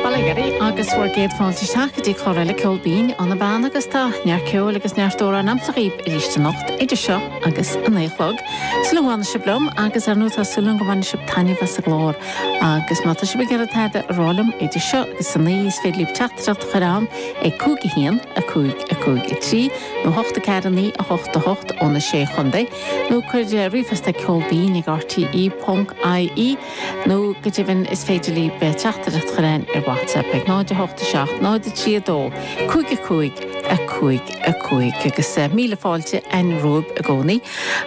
Bail ó Dhia oraibh agus bhur gcéad fáilte isteach go dtí clár eile Ceol Binn ó na Beanna agus tá neart ceoil agus neart amhráin a'msa dhaoib arís anocht idir seo agus a naoi a chlog. Súil go bhfanfaidh sibh liom agus ar ndóigh tá súil agam go mbainfidh sibh taitneamh as an gclár agus má tá sibh ag iarraidh tada a rá liom idir seo agus a naoi is féidir libh teachtaireacht a chur a'inn ag 5 1 5 5 3 nó 8 4 9 8 8 ó na sé chontae nó cuir ríomhphost ar Ceol Binn ag rte.ie. Nó, go deimhin, is féidir libh teachtaireacht a chur a'inn ar WhatsApp ag 0, 8, 7, 0, 3, 2, 5, 5, 5, 5. Agus míle fáilte a'inn romhaibh i gcónaí.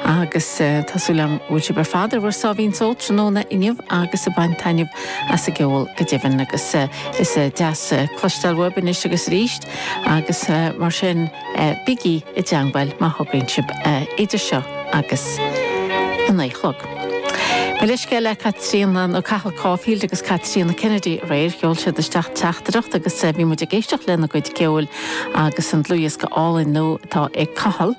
Agus tá súil a'm go bhfuil sibh ar fad ar bhur sáimhín só tráthnóna inniu agus ag baint taitneamh as an gceol go deimhin. Agus is deas cloisteáil uaibh anois agus arís. Agus mar sin, bígí i dteangmháil má thograíonn sibh idir seo agus a naoi chlog. Mo leithscéal le Caitríona, nó Cathal Caulfield agus Caitríona Kennedy aréir, sheol siad isteach teachtaireacht agus bhí muid ag éisteacht lena gcuid ceoil agus an dlúthdhiosca álainn nua atá ag Cathal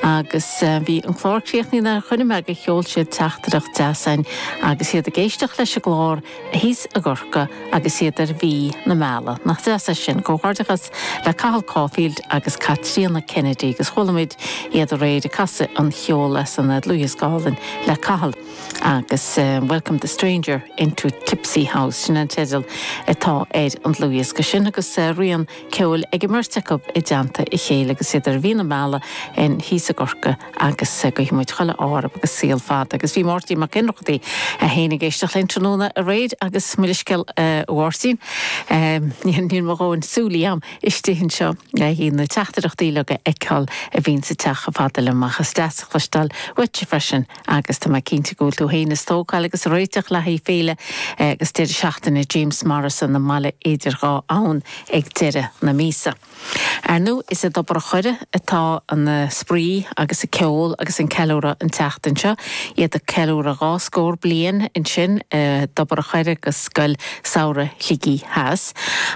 agus bhí an clár críochnaithe nuair a chuimhnigh mé gur sheol siad teachtaireacht deas a'inn agus iad ag éisteacht leis an gclár thíos i gCorcaigh agus iad ar mhí na meala. Nach deas é sin? Comhghairdeachas le Cathal Caulfield agus Caitríona Kennedy agus chuala muid iad aréir ag casadh an cheoil as an dlúthdhiosca álainn le Cathal agus Welcome the Stranger into Tipsy House, sin an teideal atá ar an dlúthdhiosca sin agus roinnt ceoil ag an mbeirt acu i dteannta a chéile agus iad ar mhí na meala thíos i gCorca. agus guífidh muid chuile ádh orthub agus saol fada agus bhí Máirtín Mac Ionnrachtaigh é féin ag éisteacht linn tráthnóna aréir agus mo leithscéal a Mháirtín níl mo dhóthain súil a'am istigh anseo le na teachtaireachtaí uilig a fheiceáil a bhíonns ag teacht chomh fada liom ach is deas a chloisteáil uaitse freisin agus tá mé cinnte go bhfuil tú féin a' stócáil agus a' réiteach le haghaidh féile agus deireadh seachtaine James Morrison i mBaile idir Dhá Abhainn ag deireadh na míosa. Ar ndú is i dTobar a' Choire atá an spraoi agus an ceol agus an ceiliúradh an tseachtain seo. Iad ag ceiliúradh dhá scór bliain ansin i dTobar a' Choire agus Scoil Samhraidh Shligigh Theas.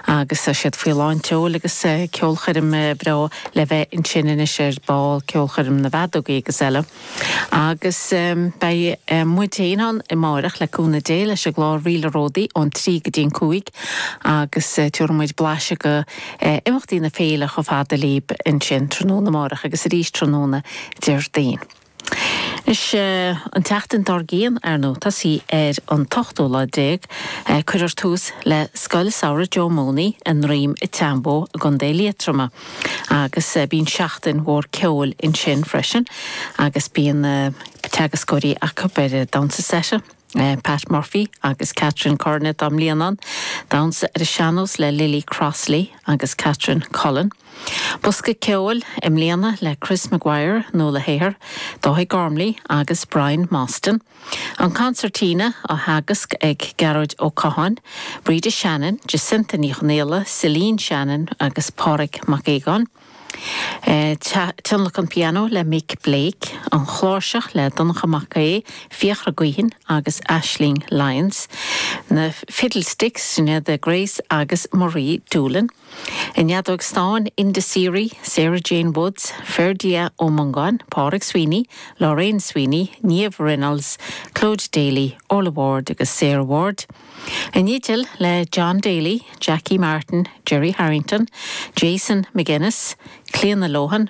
Agus tá siad faoi lán tseoil agus ceolchoirm bhreá le bheith ansin anois ar ball, Ceolchoirm na bhFeadógaí agus eile. Agus beidh muid féin ann amáireach, le cúnamh Dé, leis an gclár Ríl a' Ródaí ón trí go dtí an cúig agus tiubhraidh muid blaiseadh de imeachtaí na féile chomh fada lib ansin tráthnóna amáireach agus arís tráthnóna Déardaoin. Anois an tseachtain dár gcionn, ar ndú, ag tosaí ar an t-ochtú lá déag, cuirfear tús le Scoil Samhraidh Joe Mooney i nDroim Seanbhó i gContae Liatroma. Agus bíonn seachtain mhór ceoil ansin freisin agus bíonn teagascóirí acu ar Damhsa Seta, Pat Murphy agus Catherine Curran atá i mbliana ann, damhsa ar an sean-nós le Lily Crossley agus Catherine Cullen, bosca ceoil i mbliana le Chris Maguire, Nuala Hehir, Dáithí Gormley agus Brian Mostyn. An Concertina á theagasc ag Gearóid Ó Catháin, Breda Shannon, Jacinta Ní Chonaola, Celine Shannon agus Pádraig Mac Aogáin, Tionlacan Piano le Mick Blake, An Chláirseach le Donncha Mac Aodha, Fiachra Guihen agus Aisling Lyons, na Fiddlesticks, Sinéad de Grace agus Marie Doolan, I neadóg stáin, Enda Seary, Sarah Jane Woods, Ferdia Ó Mongáin, Pádraig Sweeney, Lorraine Sweeney, Niamh Reynolds, Clóid Daly, Orla Ward agus Sarah Ward. I ndídean, le John Daly, Jackie Martin, Gerry Harrington, Jason McGuinness, Clíona Lohan,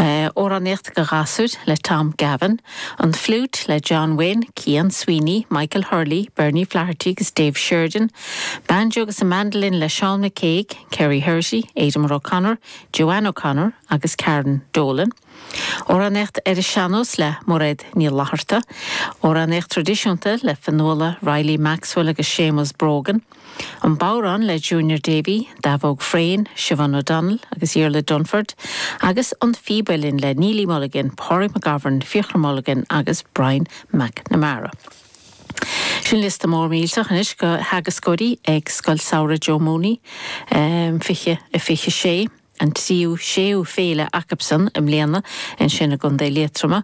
Amhránaíocht do ghasúir le Tom Gavin, an fliúit le John Wynne, Cian Sweeney, Michael Hurley, Bernie Flaherty agus Dave Sheridan, banjo agus an mandolin le Seán McCague, Kerrie Herrity, Aidan O'Connor, Joanne O'Connor agus Karen Dolan. Amhránaíocht ar an sean-nós le Mairéad Ní Fhlatharta. Amhránaíocht traidisiúnta le Fionnuala Reilly Maxwell agus Seamus Brogan. An Bodhrán le Junior Davey, Davog Frayne, Siobhán O'Donnell agus Iarla Dunford, agus An Phíb Uilleann le Néillidh Mulligan, Pádraig McGovern, Fiachra Mulligan agus Brian McNamara. Sin liosta mór millteach anois go theagascóirí ag Scoil Samhraidh Joe Mooney 2026. an tríú, séú féile acusan i mbliana ansin i gContae Liatroma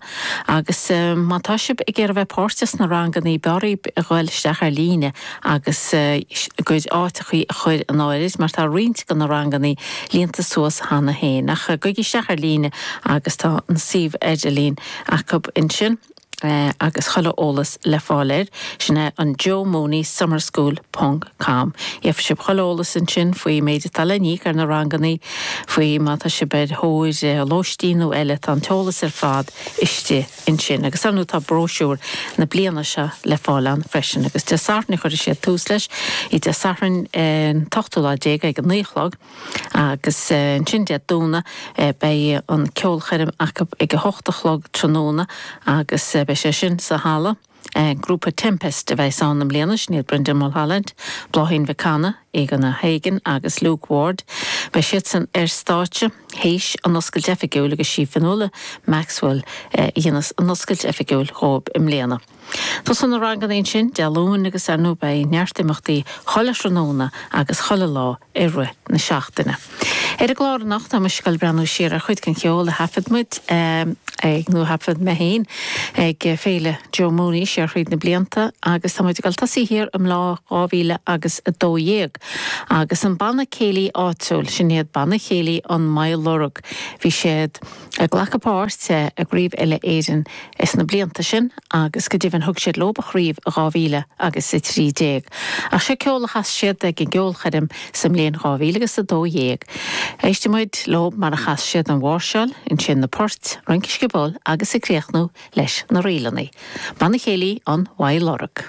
agus má tá sibh ag iarraidh bheith páirteach sna ranganna b'fhearr dhaoibh a ghoil isteach ar líne agus bhur gcuid áiteachaí a chur in áirid mar tá roinnt de na ranganna líonta suas cheana féin ach gabhaigí isteach ar líne agus tá an suíomh idirlín acu ansin. agus chuile eolas le fáil air, sin é an Joe Mooney Summer School ponc com. Gheobhaidh sibh chuile eolas ansin faoin méid atá le n-íoc ar na rangannaí, faoi má tá sibh ar thóir lóistín nó eile, tá an t-eolas ar fad istigh ansin. Agus, ar ndú, tá bróisiúr na bliana seo le fáil ann freisin. Agus Dé Sathairn a chuirfidh siad tús leis, í Dé Sathairn an t-ochtú lá déag ag a naoi a chlog. Agus ansin Dé Domhnaigh beidh an ceolchoirm acu ag a hocht a chlog tráthnóna agus beidh sé sin sa halla. An grúpa Tempest a bheas ann i mbliana, sin iad Brendan Mulholland, Bláithín Mhic Cana, Aaron O'Hagan agus Luke Ward. Beidh siadsan ar stáitse théis an oscailt oifigiúil agus sí Fionnuala Maxwell a dhéanfas an oscailt oifigiúil dhóibh i mbliana. Tosaíonn na ranganna ansin Dé Luain agus ar ndóigh beidh neart imeachtaí chuile thráthnóna agus chuile lá i rith na seachtaine. Ar an gclár anocht tá muid ag goil ag breathnú siar ar chuid den cheol a thaifead muid, nó a thaifead mé féin, ag Féile Joe Mooney siar thríd na blianta agus tá muid ag goil ag tosaí thiar i mbliain 2012 agus an banna céilí áitiúil, sin iad Banna Céilí an Moylurg. Bhí siad. Ag glacadh páirte i gCraobh Uile-Éireann ins na blianta sin agus go deimhin thug siad leo an chraobh i 2000 agus i 13. Ach seo ceol a chas siad ag an gceolchoirm sa mbliain 2000 agus a dó dhéag. Éistfidh muid leo mar a chas siad an mháirseáil, ansin na poirt, rince sciobóil agus ag críochnú leis na ríleanna. Banna Céilí Mhaigh Loirg.